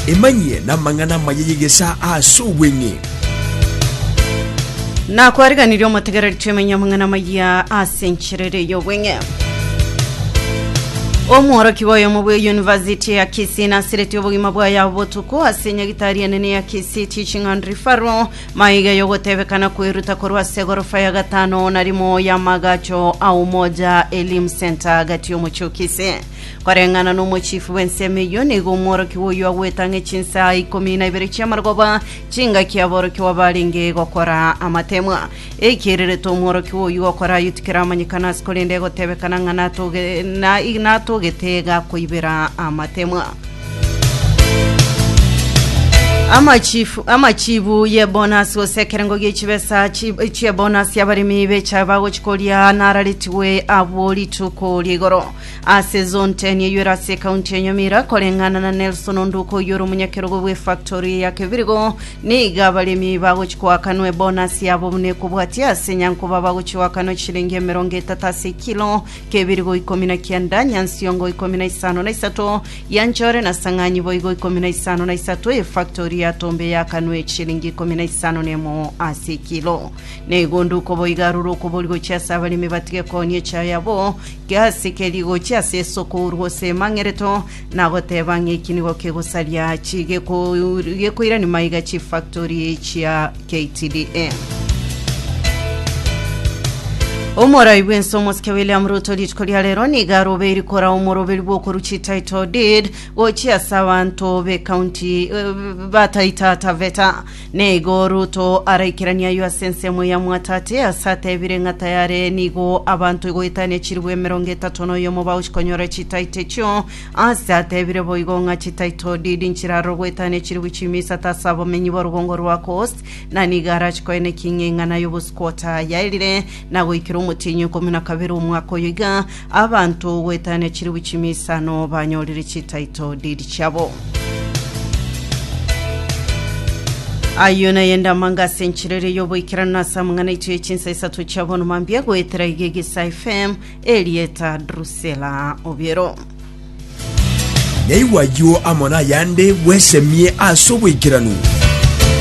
Emanyie namang'ana amaya y'egesaa ase obweng'e. Nakwariganirie omotegereri twemenye amang'ana amaya ase enchera ere y'obweng'e omworokigwa oyomo bwe yunivasiti ya kisii nasiretie obogima bwaye abo botuko ase enyagitari enene ya kisii teaching and referral Maiga y'ogotebekana kweruta korwa ase egorofa ya gatano na rimo y'amagacho a Umoja Elimu Centre agati y'omochie o Kisii. Koreng'ana n'omochifu bw'ensemo eyio, nigo omworokigwa oyio agoeta ng'a chinsa ikomi na ibere chi'amarogoba chingaki aborokigwa barenge gokora amatemwa. Ekiirireto omworokigwa oyio gokora ayio tikeramanyekana ase korende egotebekana ng'a natoge- na- natogete gakoibera amatemwa. Amachifu, amachibu y'ebonus gose ekerengo gie chibesa chi- chi'ebonus y'abaremi becha bagochi koria nararetigwe abwo rituko ria igoro ase zone 10 eywo ere ase ekaunti ya Nyamira koreng'ana na Nelson Onduko oywo ore omonyakerogo bw'efactory ya Kebirigo niga abaremi bagochi koakanwa ebonus yabo buna ekobwatia ase Nyankoba bagochi goakanwa chiringi emerongo etato ase ekilo kebirigo ikomi na kianda, nyansiongo ikomi na isano na isato, ya nchore na sang'anyi boigo ikomi na isano na isato, efaktori ya tombe yakanwe eshilingi ikomi na isano na emo ase ekilo. Na egonduko boigo arure okobori gochia ase abaremi batige kooni echayo yabo, kiasike rigochia ase esoko oru gose emang'ereto, Nagoteba ng'a eki nigo kegosaria chi geko- gekoirani maiga chifactory chia KTDA. Omorai bw'ense omosike William Ruto rituko ria rero nigo arobeiri kora omoroberi bw'okoruchi title deed gochia ase abanto b'ecounty eh, bataita taveta Nigo Ruto araikeranie ayio ase ensemo ya Mwatate, ase atebire ng'a tayare nigo abanto goetania chilifu emerongo etato na oyomo bagochi konyora chitaito echio, ase atebire boigo ng'a chitaito didi nchirarorwe goetania chilifu chimia isato ase abamenyi ba Rugongo rwa Coast, na nigo arachikoene king'eng'ana y'obosuku otayaerire na goikera omotienyi okomia na kabere omwaka oyo iga, Abanto goetania chilifu chimia isano banyorire chititle deed chiabo. Ayio naye ndamanga ase enchera eria y'oboikeranu na ase amang'ana aito ye chinsa isato chia bono mambia goetera iga egesa FM erieta Drusilla Obiero. Naigwa ayio amo nayande bwesemie ase oboikeranu.